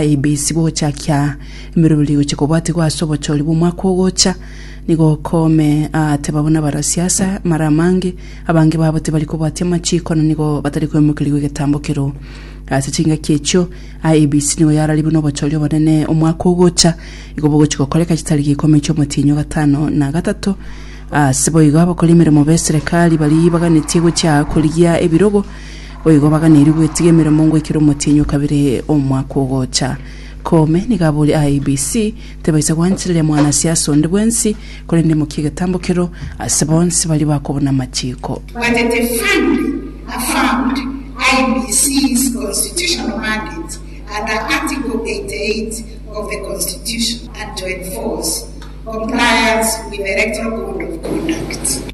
IBC gochakia emeroberi gochia kobwatigwa ase obochori bw'omwaka ogocha nigo okome ateba buna barasia ase amare amange abange babo tibari kobwatia amachiko na nigo batari koimokerigwa egetambokero ase chingaki echio IBC nigo yarari buna obochori obonene omwaka ogocha igo bogochia gokoreka chitari gikumi chi'omotinyo gatano na gatato ase boigo abakori emeremo b'eserekari bari baganetie gochia korigia ebirogo Boigo baganeirie gwetiga emeremo ngoikera omotienyi o kabere omwaka ogocha. Koome nigo aboria IEBC tebaisa gwanchereria mwanasiasa onde bwensi korende emokie egetambokero ase bonsi baria bakobuna amachiko. Bwatete finally affirmed IEBC's constitutional mandate under Article 88 of the Constitution and to enforce compliance with the Electoral Code of Conduct.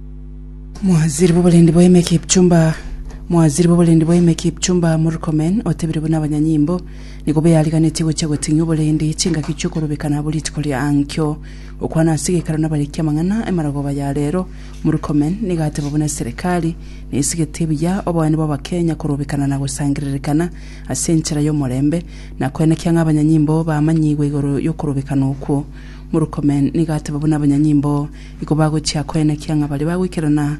Mwaziri b'oborendi bwa Ime Kipchumba Mwaziri b'oborendi bwa Ime Kipchumba Murkomen otebire buna abanyanyimbo nigo beariganetie gochia goting'ia oborendi chingaki chi'okorobeka nabo rituko ria ankio. Gokwana ase geikaro nabariki amang'ana emarogoba ya rero, Murkomen nigo ateba buna serikali nesigetie buya oboene bw'abakenya korobekana na gosangererekana ase enchera y'omorembe na koenekia ng'a abanyanyimbo bamanyigwe igoro y'okorobekana okwo. Murkomen nigo ateba buna abanyanyimbo Iko bagochia koenekia ng'a baria bagoikerana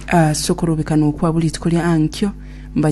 ase okorobekana okwa buriiko ria Ankio,